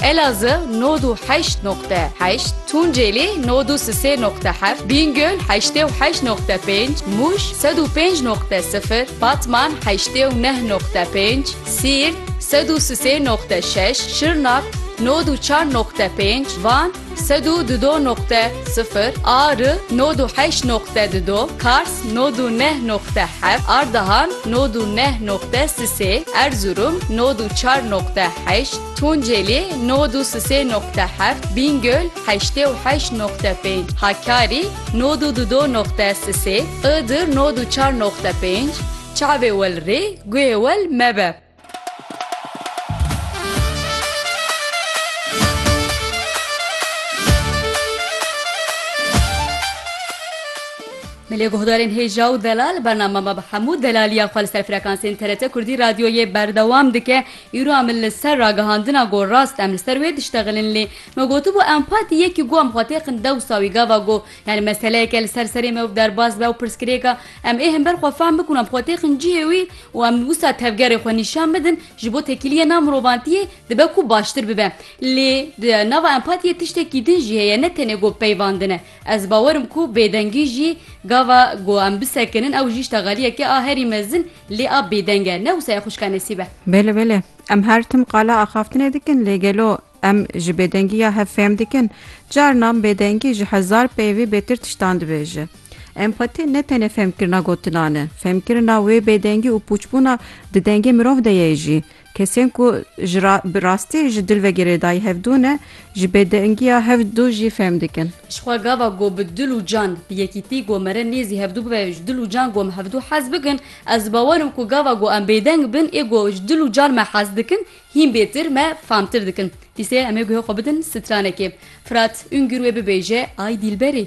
Elazığ nod û heşt noqte heşt, Tunceli nod û sisê noqte heft, Bîngöl heştê û heşt noqte pênc, Mûş sed û pênc noqte sifir, Batman heştê û neh noqte pênc, Siirt sed û sisê noqte şeş, Şirnak nod û çar noqte pênc, Van sed û di do noqte sifir, Ağrı nod û heşt noqte di do, Kars nod û neh noqte heft, Ardahan nod û neh noqte sisê, Erzurum nod û çar noqte heşt, Tunceli, nod û sisê noqte heft, Bîngöl, heştê û heşt noqte pênc, Hakkari, nod û dudo noqte sisê, Iğdır, nod û çar noqte pênc, Çavê wel rê, guhê wel mebe. Milê guhdarên hêja û delal bername me bi hemû delaliya xwe li ser frekansên TRT Kurdî Radyoyê berdewam dike. Îro em li ser ragihandina ku rast em li ser wê diştexilin lê me gotibû empatî yekî ku em xwe têxin dewsa wî gava ku yanî meseleyeke li ser serê me û derbas be û pirsgirêka em ê himber xwe fehm bikin û em xwe têxin cihê wî û em wisa tevgerê xwe nîşan bidin ji bo tekîliyê nav mirovantiyê dibe ku baştir bibe lê di nava empatiyê tiştekî din jî heye ne tenê ku peyvandin e ez bawer im ku bêdengî jî gava ku em bisekinin ew jî ştegaliyeke a herî mezin Lê av bêdeng e, ne wisa ye xwişka Nesîb e. Bele bele. Em her tim qala axaftinê dikin lê gelo em ji bêdengiya hev fêm dikin? Carinan bêdengî ji hezar peyvê bêtir tiştan dibêje. Empati ne tenê fêmkirina gotinan e. Fêmkirina wê bêdengî û pûçbûna di dengê mirov de ye jî. Kesên ku ji ra bi rastî ji dil ve girêdayî hevdû ne, ji bêdingiya hevdû jî fêm dikin. Jixwe gava ku bi dil û can, bi yekîtî ku mere nêzî hevdû bibe, ji dil û can ku em hevdû hez bikin, ez di bawer im ku gava ku em bêdeng bin ê ku ji dil û can me hez dikin, hîn bêtir me famtir dikin. Pîsê em ê guhê xwe bidin stranekê. Fırat Üngür wê bibêje, Ay dîlberî!